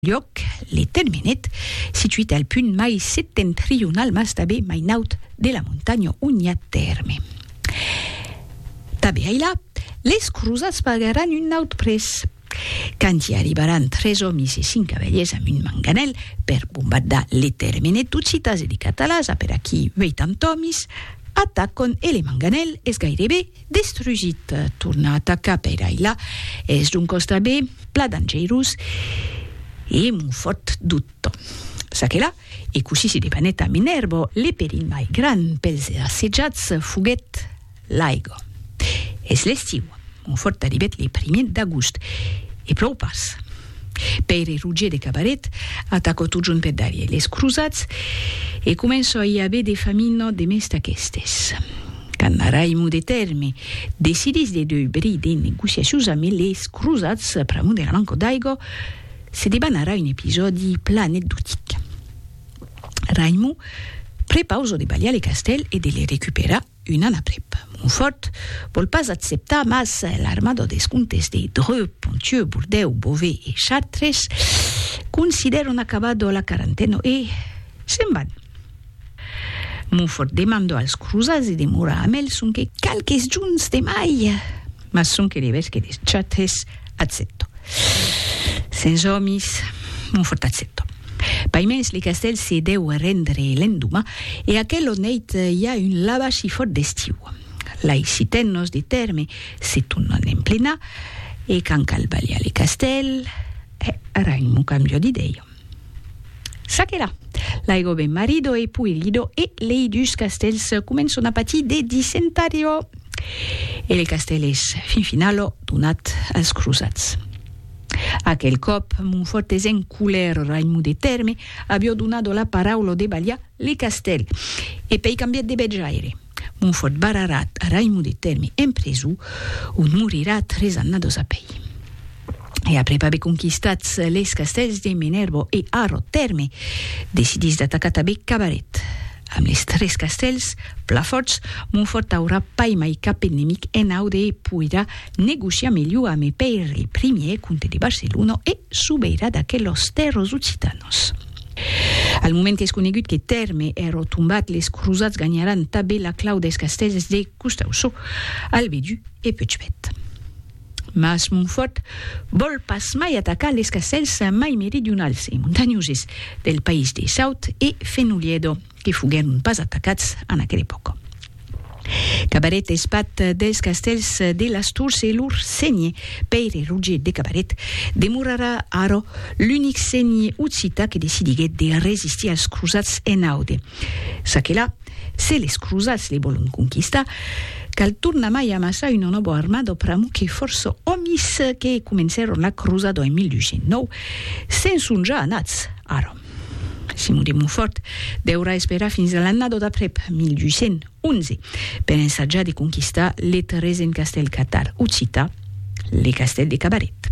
Lhòc, Le Tenmenet, situit al punt mai septentrional mas tanben mai naut de la montanha on i a tèrme. Tanben ailà, les crosats pagaràn un naut prés. Quand i arribaràn tres òmis e cinc cavalièrs amb un manganèl per bombardar Le Termenet d'Occitas e de Catalasa per aquí 80 òmis atacon e le manganèl es gairebe Destrugit, tornar a atacar per ailà es d'un costat be pla dangerós e mon fòrt dubto. Ça que là, e cossí se debanèt a Minervo, le perilh mai gran pels assetjats foguèt l'aigo. Es l'estiu, mon fòrt arribèt le primier d'agost, e plòu pas. Pèire Roger de Cabaret atacò totjorn per darrièr les crosats e començò a i aver de famina de mès d'aquestes. Quand Raimon de Tèrme decidís de deubrir de negociacions amé les crosats pr'amor de la manca d'aigua, se debanarà un episòdi plan anecdotic. Raimon prepausò de balhar le castèl e de le recuperar. Un an aprèp, Monfòrt vòl pas acceptar mas l'armada dels comtes de Dreux, Ponthieu, Bordèu, Beauvais e Chartres considèran acabada la quarantena e se'n van. Monfòrt demanda als crosats de demorar amb el sonque qualques jorns de mai, mas sonque l'evesque de Chartres Accèpto. Sens òmis, mon fòrt accèpto. Paimens le castèl se dèu rendre l'endoma e aquel ò nèit i a un lavashi fòrt d'estiu. Lai sitèn nos de tèrme, se tu non en plena, e quand cal balhar le castèl, hè, ara un mon cambio d'idèia. Ça que la! La ego ben marido e pui lido e lei dus castèls començon a patir de dissentario. E le castèl es, fin finalo, donat als crosats. Aquel còp, Monfòrt es en colèra, Raimon de Tèrme avió donado la paraula de balhar le castèl, e pei cambiat de betjaire. Monfòrt barrarà Raimon de Tèrme en preson, ont morirà tres annados apei. e après pas be conquistats les castèls de Menerbo e Arro Tèrme, decidís d'atacar tanben Cabaret. Amb les tres castèls pla fòrts, Montfòrt aurà pas mai cap enemic en aude e poirà negociar melhor amé Pèire I, comte de Barcelona e sobeirà d'aquelos tèrros occitanos. Al moment es conegut que Tèrme è rotombat, les crosats ganharàn tanben la clau dels castèls de Costausó, Albedú e Puigbèt. Mas Montfòrt vòl pas mai atacar les castèls mai meridionals e montanhoses del país de Saut e Fenoliedo, que foguèron pas atacats en aquela epòca. Cabaret es path dels castèls de las Tours e lor sénher, Pèire Roger de Cabaret, demorarà ara l'unic sénher occità que decidiguèt de resistir als crosats en Aude. Çaquelà, Se les crosats les volon conquistar, cal tornar mai amassar una nòva armada pr'amor que fòrça òmis que comencèron la crosada en 1209 se'n son ja anats. Ara, Simon de Montfòrt deurà esperar fins a l'annada d'aprèp, 1211, per ensajar de conquistar le tresent castèl catal occità, le castèl de Cabaret.